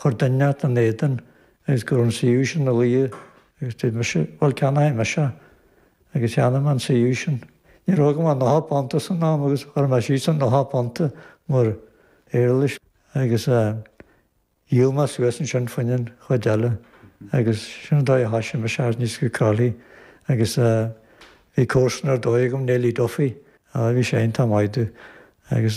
Chuir duine inteacht ina éadan agus go raibh an suíomh sin ina luí agus dúirt mise bhuel ceannóidh mise agus cheannaigh mé an suíomh sin. Ní raibh agam ach nocha punta san am agus chuir mé síos an nocha punta mar éarlais agus dhíol mé suas ansin fá choinne an chuid eile agus sin an dóigh a thoisigh mise thíos i gCroithlí agus bhí comharsan ar dóigh agam Nellie Duffy, á bhí sí iontach maith agus.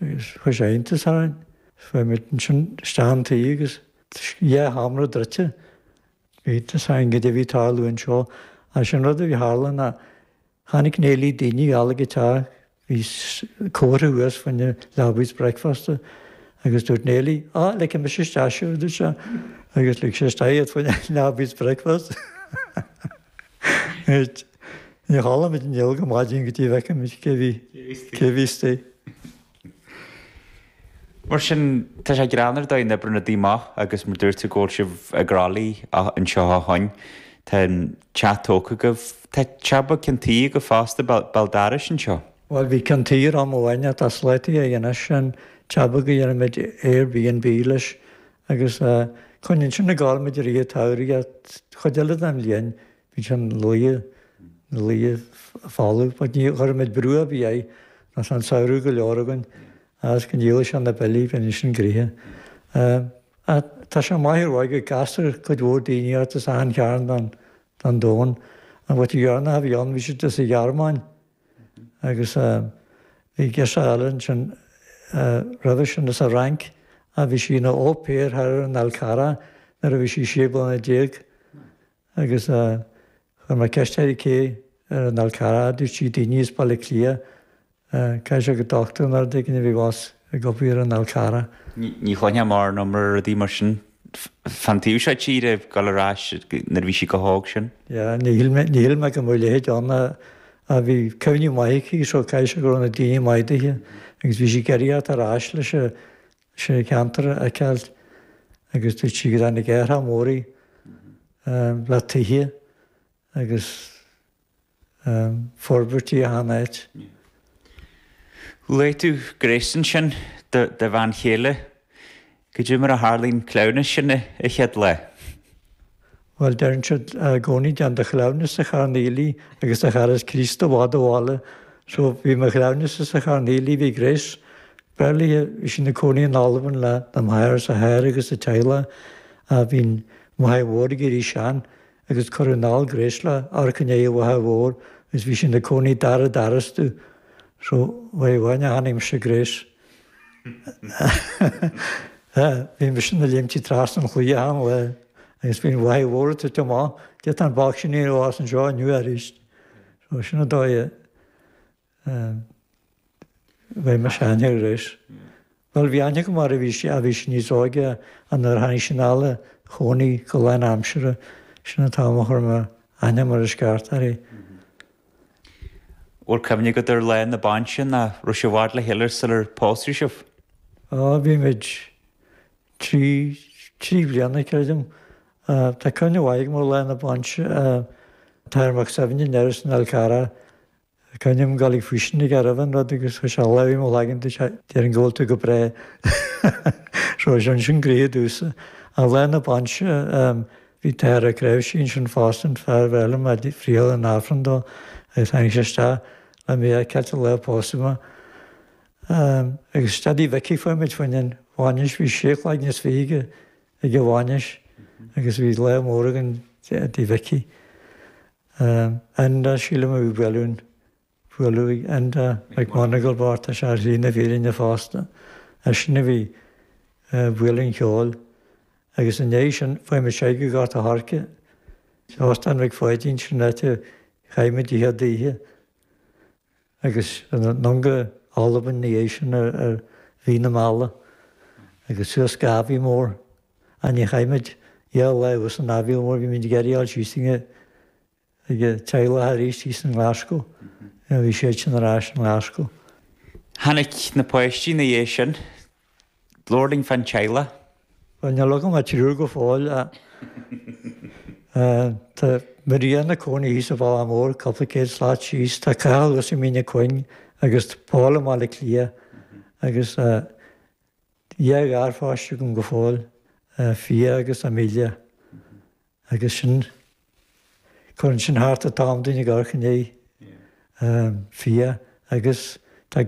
agus chuir sé iontas orainn. Chuaigh muid ansin isteach chun tí agus dhá sheomra druidte. Bhí iontas orainn goidé a bhí ag tarlú anseo. Agus an rud a bhí tharla ná chonaic Nellie daoine thall ag an teach. Bhí comhartha thuas fá choinne leabaidh is bricfeasta agus dúirt Nellie, Á, ligfidh mise isteach sibh, a dúirt sí. Agus lig sí isteach iad fá choinne leabaidh is bricfeasta. Ach níor chodail muid néal go maidin go dtí go bhfeicimid cé bhí cé bhí istigh. Mar sin, tá sé greannmhar an dóigh a n-oibríonn rudaí amach agus mar dúirt tú go bhfuil sibh i gCroithlí anseo ó shoin. Tá an teach tógtha agaibh. Tá teach beag ceann tuí agaibh fosta, béal dorais anseo. Bhuel, bhí ceann tuí air am amháin ach tá sclátaí air anois, an teach beag go ndéanaimid Airbnb leis Agus coinníonn sin ag gabháil muid i rith an tsamhraidh a' chuid eile den bhliain, bíonn sé na luighe, na luighe falamh, but ní chuirimid brú a' bith air, nó tá an samhradh go leor againn, a's go ndíolfaidh sé na billí, bíonn insin gcríche. Ach tá sé maith ar dhóigh, go gcastar cuid mhór daoiní ort, as achan chearn den domhan, an mhuintir dheireanach a bhí ann, bhí siad as an Ghearmáin, agus bhí girseach eile ansin roimhe sin as an Fhrainc ach bhí sí ina au pair thall ar an Fhál Charrach nuair a bhí sí sé bliana déag agus chuir mé ceist uirthi cé ar an Fhál Charrach a dúirt sí daoine as Baile Átha Cliath caithfidh sé gur dochtúir nó rud éigin a bhí abhus ag obair ar an Fhál Charrach. Ní chluinfeá mórán iomrá ar rudaí mar sin. fán taobh seo tíre ag dul ar ais nuair a bhí sí go hóg sin. Yeah, níor shíl mé go mbeadh a leithéid ann ach bhí cuimhní maithe aici, so caithfidh sé go raibh na daoine maith duithe agus bhí sí ag iarraidh theacht ar ais leis an cheantar a fheiceáilt agus dúirt sí go dtáinig athraithe móra le tithe agus forbairtí achan áit. Luaigh tú Grace ansin, do do bhean chéile. Goidé mar a tharla an cleamhnas sin an chéad lá. Bhuel, deireann siad i gcónaí déan do chleamhnas sa charn aoiligh agus do charas Críost i bhfad ó bhaile. So, bhí mo chleamhnas-sa sa Charn Aoiligh, bhí Grace, Bearlaithe, bhí sí ina cónaí in Albain lena máthair is a hathair agus a teaghlach. Bhí an mháthair mhór ag éirí sean, agus cur i ndall gréasla amharc in aghaidh a mhaithe mhóir agus bhí siad ina cónaí dara d'arastú so bhí uainn a tháinig mise gréas bhí mise ina liomtí trasna an chlaí a thángthas air agus bhí an mhaith mhór ata tiom ann d'fhéadfadh an bác sin a dhíol as anseo inniu arís so sin an dóigh a Chuir mise aithne uirthi. Bhuel, bhí aithne agam uirthi nuair a bhí sí, a bhí sí níos óige ach nuair a tháinig sí anall a chónaí go lánaimseartha, sin an t-am a chuir mé aithne mar is ceart uirthi. Bhfuil cuimhne agat ar lá na bainse nó an raibh sibh i bhfad le chéile sular pósadh sibh? Á, bhí muid trí, trí bliana creidim. Tá cuimhne mhaith agam ar lá na bainse. An tAthair Mac Suibhne anoir san Alcázar Tá c'ainm Gaeilge faoi sin ag Erevan, rud, agus tá sé lámh imo leagan de, deir an gol tú go breá. Seo is ansin gnoitheach i dtús an lae na bainse, bhí an tAthair tréimhsí ansin fosta an fear a bhí mé a' friotháil an Aifreann dó agus tháinig sé isteach le mé a fheiceáilt an lá pósadh mé. Agus isteach tigh Mhicí chuaigh muid fá choinne an bhainis, bhí sé chloigne is fiche againn ag an bhainis agus bhí lá mór againn tigh Mhicí. Enda, Sílim a bhí ag bualadh. Bhuel, Enda McMonagle bocht tá sé ar shlí na fírinne fosta. Eisean a bhí ag bualadh an cheoil. Agus i ndiaidh sin, chuaigh muid soir go Gort a' Choirce. Óstán Mhic Pháidín, sin an áit a chaith muid an chéad oíche. Agus anonn go hAlbain ina dhiaidh sin ar mhí na meala. Agus suas go Aviemore. Ach níor chaith muid ach dhá lá thuas in Aviemore, bhí muid ag iarraidh fháil síos chuig an teaghlach arís thíos i nGlaschú. Bhí siad sin ar ais i nGlaschú. Tháinig na páistí ina dhiaidh sin. Labhair linn fán teaghlach. Bhuel, níl agam ach triúr go fóill. Tá Maria ina cónaí thíos an bealach mór, cupla céad slat síos. Tá Cathal thuas i Mín na Cuinge agus tá Paul i mBaile Átha Cliath. Agus tá dhá gharpháiste agam go fóill, Fia agus Amelia. Agus sin, cuireann sin thart an t-am dúinn ag amharc i ndiaidh Fia agus tá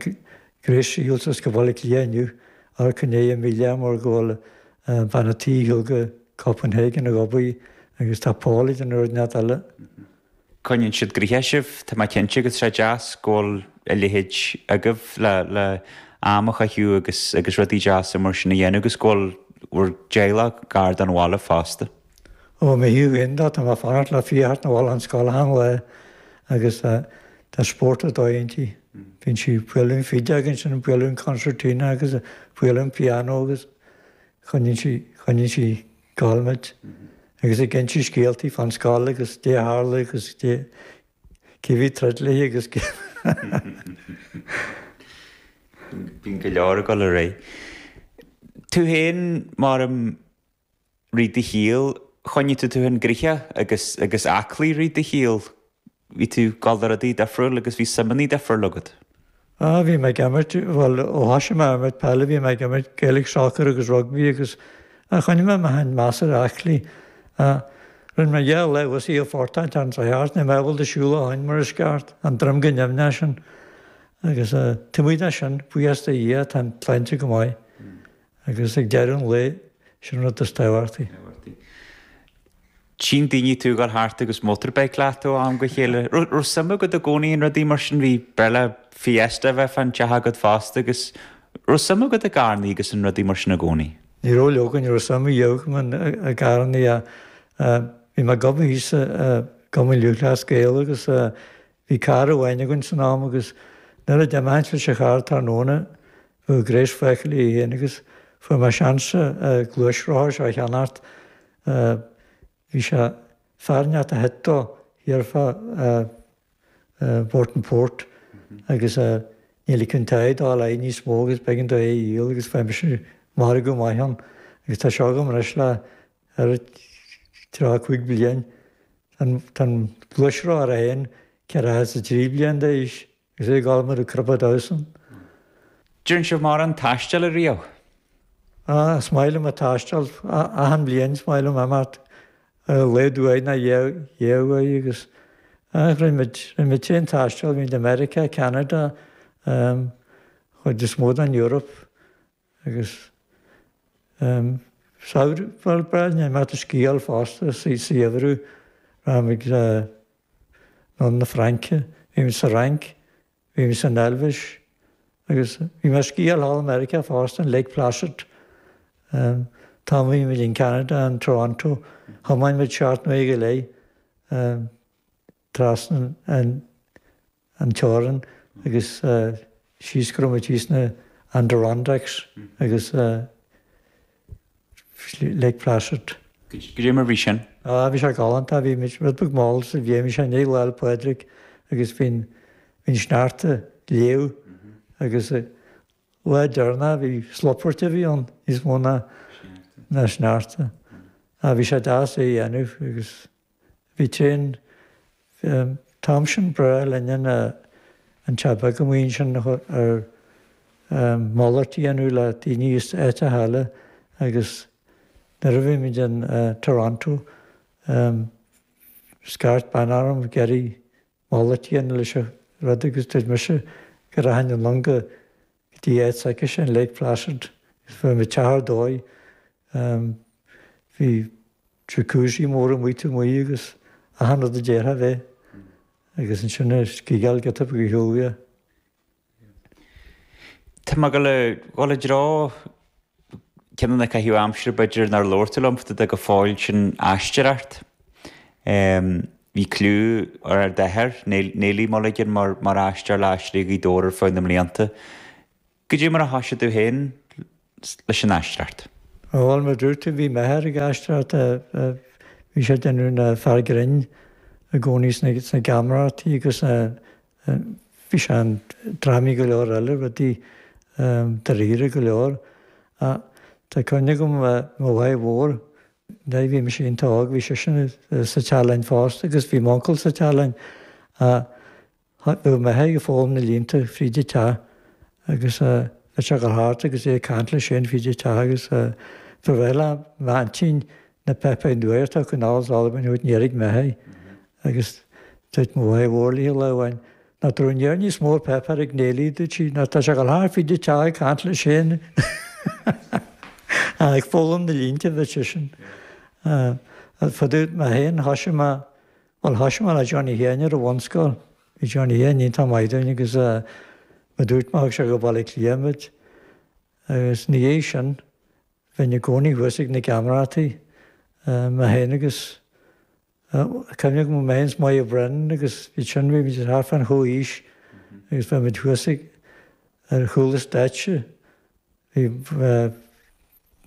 Grace ag dul suas go Baile Átha Cliath inniu a dh'amharc i ndiaidh Amelia mar go bhfuil bean an tí ag dul go Copenhagen ag obair agus tá Paul idir an fhoireann nead eile. Coinníonn siad gnoitheach sibh, tá mé cinnte, agus is deas go bhfuil a leithéid agaibh le, le am a chaitheamh agus, agus rudaí deasa mar sin a dhéanamh agus go bhfuil bhur dteaghlach gar don bhaile fosta. Ó, mo thaobh féin de, tá mé ag fanacht le Fia a theacht 'na bhaile ón scoil achan lá agus tá, tá spórt ar dóigh inti. Bíonn sí ag bualadh an fidil agus ansin ag bualadh an concertina agus ag bualadh an piano agus coinníonn sí, coinníonn sí. Stormont agus ag inse scéaltaí fán scoil agus caidé a tharla agus cé a bhí ag troid léi agus cé Bíonn go leor ag dul ar aghaidh. Tú fhéin, mar i rith do shaoil, choinnigh tú tú fhéin gnoitheach agus aclaí i rith do shaoil, Bhí tú ag dul do rudaí difriúil agus bhí suimeanna difriúil agat. Ah, bhí mé ag imirt, bhuel, ó thosaigh mé ag imirt peile bhí mé ag imirt Gaelic soccer agus rugbaí agus ah choinnigh mé mé fhéin measartha aclaí. Ah, rinne mé dhá lá usi a phortáil thar an Droicheart, níl mé ábalta siúl ó shin mar is ceart, an droim go nimhneach sin. Agus ah, taobh amuigh de sin, buíochas do Dhia, tá an tsláinte go maith. Agus ag deireadh an lae, sin an rud is tábhachtaí. Tchíonn daoine tú ag dul thart agus motorbike leat ó am go chéile. Raibh suim agat i gcónaí in rudaí mar sin? Ba ghnách le Fiesta a bheith fán teach agat fosta agus raibh suim agat i gcarrannaí agus in rudaí mar sin i gcónaí? Ní raibh, leoga, ní raibh suim ar bith agam i gcarrannaí ach bhí mé ag obair thíos i gCumann Lúthchleas Gael agus bhí carr amháin againn san am agus nuair a d'imínnse leis an charr tráthnóna, Bhí Grace fágtha léi fhéin agus fuair mé seans an gluaisrothar seo a cheannacht. Bhí sé ag fear inteacht a thit de thiar fá Burtonport agus ní ligfeadh a bhean dó dul air níos mó agus b'éigean dó é a dhíol agus fuair mise margadh maith ann agus tá sé agam anois le tríocha cúig bliain. Tá an gluaisrothar é fhéin ceathracha is a trí bliain d'aois. Is é ag gabháil mar a cruthaigh Dyson. An dearn sibh mórán taistil ariamh? Ah, is maith liom an taisteal. Achan bhliain is maith liom imeacht ar a laghad uair nó dhá uair agus ah rinne muid tréan taistil, bhínn i Meiriceá, Ceanada, an chuid is mó den Eoraip. Agus um samhradh, bhuel, ba bhreá liom a bheith ag sciáil fosta, sa gheimhreadh, rachadh muid anonn chun na Fraince, bhí muid sa Fhrainc, bhí muid san Eilvéis agus bhí mé ag sciáil thall i Meiriceá fosta, in Lake Placid. Um tá, bhí muid in Ceanada, in Toronto, thiomáin muid seacht n-uaire go leith um trasna an an teorainn agus síos go raibh muid thíos sna Adirondacks agus Lake Placid. Caidé mar a bhí sin? Ah, bhí sé galánta, bhí muid rud beag mall sa bhliain, bhí sé i ndiaidh Lá 'le Pádraig agus bhí an sneachta ag leá agus lá deireanach bhí slupairt a bhí ann níos mó ná sneachta. Ah, bhí sé deas é a dhéanamh agus Bhí tinn. Bhí an t-am sin breá linne ná an teach a bhí agam amuigh ansin ar mhalairt a dhéanamh le daoine as áiteacha eile agus nuair a bhí muid in Toronto scairt bean orm, Gerry, Malairt a dhéanamh leis an rud agus dúirt mise go rachainn anonn go dtí áit s'aicise in Lake Placid, agus fuair mé teach ar dóigh, bhí jacuzzi mór amuigh taobh amuigh agus achan rud a d'iarrfá a bheith, agus ansin an sciáil giota beag ar shiúl uaidh. Tá mé ag gabháil i dtreo ceann de na caitheamh aimsire b'fhéidir nár labhair tú liom fá dtaobh de go fóill sin aisteoireacht. Bhí cliú ar ar d'athair, Néillí Néillí Mulligan mar mar aisteoir le hAisteoirí Ghaoth Dobhair ar feadh na mblianta. Cad é mar a thoisigh tú féin leis an aisteoireacht. Bhuel mar a dúirt tú bhí m'athair ag aisteoireacht, bhí sé ag déanamh an fear grinn i gcónaí sna geamaireachtaí agus bhí sé i ndrámaí go leor eile, rudaí dáiríre go leor. Tá cuimhne agam mo mháthair mhór, nuair a bhí mise iontach óg, bhí sise sa teach linn fosta agus bhí m'uncail sa teach linn. Tháinig Meitheamh ag foghlaim na línte fríd a teach agus bhí sé go hard agus é ag caint leis féin fríd a teach agus do bhreith le m'aintín na Pepe Nueir Tá cineál is ollamh inniu in Éirigh Meitheamh agus dúirt mo mhaith mhór léi lá amháin Ná tar an ndeor níos mór Pepe ar ag néilí dúirt sí Ná tá sé go hard fríd a teach ag caint leis féin ag foghlaim na línte bhí sé sin fadó Meitheamh Thoisigh mé Bhuel thoisigh mé le Johnny Sheáin ar an bhunscoil. Bhí Johnny Sheáin iontach maith dúinn agus mar a dúirt mé thug sé go Baile Átha Cliath muid agus ina dhiaidh sin bheinn i gcónaí thuas ag na geamaireachtaí mé féin agus cuimhne agam mé féin is Moya Brennan agus iad sin bhí muid thart fán chomhaois agus bheadh muid thuas ag ar chúl an stáitse bhí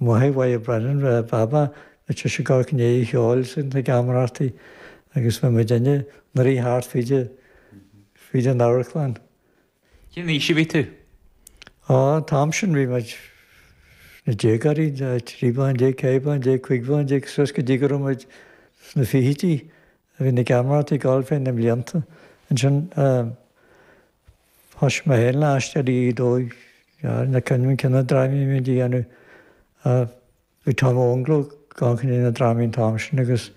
Máthair Moya Brennan Baba ná bhí sise ag amharc i ndiaidh an cheoil sna geamaireachtaí agus bhí muidinne inár rith thart fríd an amharclann. Cén aois a bhí tú? Á, an t-am sin bhí muid inár ndéagóirí, trí bliana déag, ceithre bliana déag, cúig bliana déag, suas go dtí go raibh muid sna fichidí. Bhí na geamaireachtaí ag gabháil ar feadh na mblianta ansin. Thoisigh mé fhéin le Aisteoirí Ghaoth Dobhair na cineál drámaí a bhí muid a dhéanamh. Bhí Tom Ógnall ann ag déanamh drámaí an t-am sin agus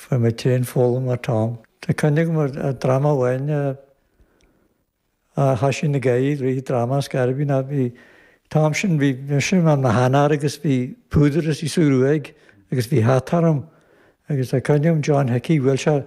bhí mé féin ag foghlaim ó Tom. Tá cuimhne agam ar dhráma amháin a thoisigh na Gaeil, Rith Drama as Gairibín, a bhí, t-am sin bhí mise i mo shean-fhear agus bhí púdar istigh sa ghruaig agus bhí hata orm agus tá cuimhne agam John Hickey, bhuail sé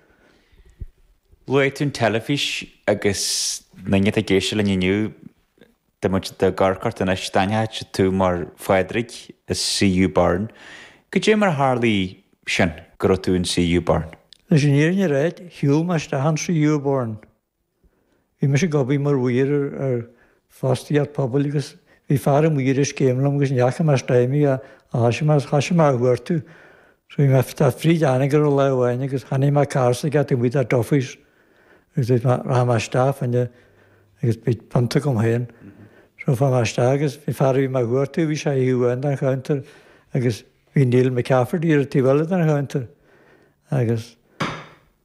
Luaigh tú an teilifís agus na daoine atá ag éisteacht linn inniu, dá mbeadh siad ag amharc ort anois. D'aithneochadh siad thú mar Phádraig i CU Burn. Caidé mar a tharlaigh sin go raibh tú in CU Burn? Leis an fhírinne a rá, shiúil mé isteach in CU Burn Bhí mise ag obair mar mhaor ar fostaíocht pobail agus bhí fear amuigh ar an scéim liom agus ní fhaca mé le tamall é thoisigh mé, thoisigh mé a chuartú. So bhí mé ag teacht fríd Anagaire lá amháin agus chonaic mé a charr taobh amuigh de Duffy's agus dúirt mé rachaidh mé isteach ann agus beidh pionta agam féin. So chuaigh mé isteach agus bhí an fear a bhí mé a chuartú, bhí sé ar thaobh amháin den chounter agus bhí Neil McCafferty ar an taobh eile den chounter agus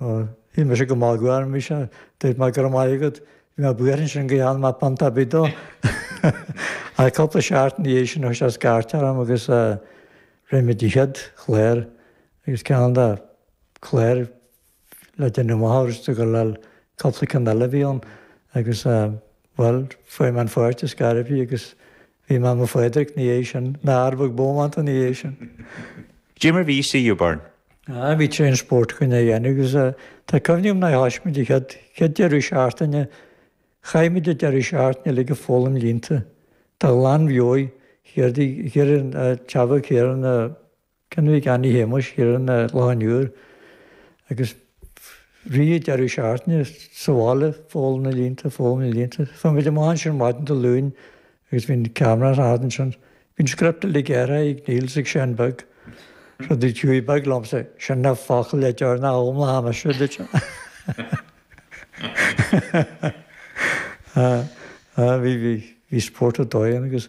Níl mise go maith gairm bhí sé dúirt mé go raibh maith agat bhí mé buíoch ansin gur cheannaigh mé pionta beag dó. Ach cúpla seachtain ina dhiaidh sin thug sé scairt orm agus rinne muid an chéad chlár agus cineál de chlár le déanamh amach an raibh siad ag gabháil le cúpla ceann eile a bhí ann agus Bhuel, fuair mé an pháirt is gairbhí agus bhí mé i mo Phádraic ina dhiaidh sin, mé rud beag bómánta ina dhiaidh sin. Caidé mar a bhí CU Burn? Aye, bhí tréan spóirt againn á dhéanamh agus tá cuimhne agam nuair a thoisigh muid an chéad, chéad deireadh seachtaine, chaith muid an deireadh seachtaine uilig ag foghlaim línte. Tá a lán bheoigh, chéard í, chéard é an, Chava, chéard é an. Ceannaigh Annie Shéamuis Sheeran a lán uair agus rith an deireadh seachtaine sa bhaile, ag foghlaim na línte, foghlaim na línte. Chuaigh muid amach ansin ar maidin Dé Luain agus bhí an ceamara in d'éadan ansin. Bhí an script uilig gearrtha ag Neil is ag Seán Beag, rud a chuaigh beag liomsa sin ná focal le deoir ná am le ham aiste duit. Bhí spórt ar dóigh ann agus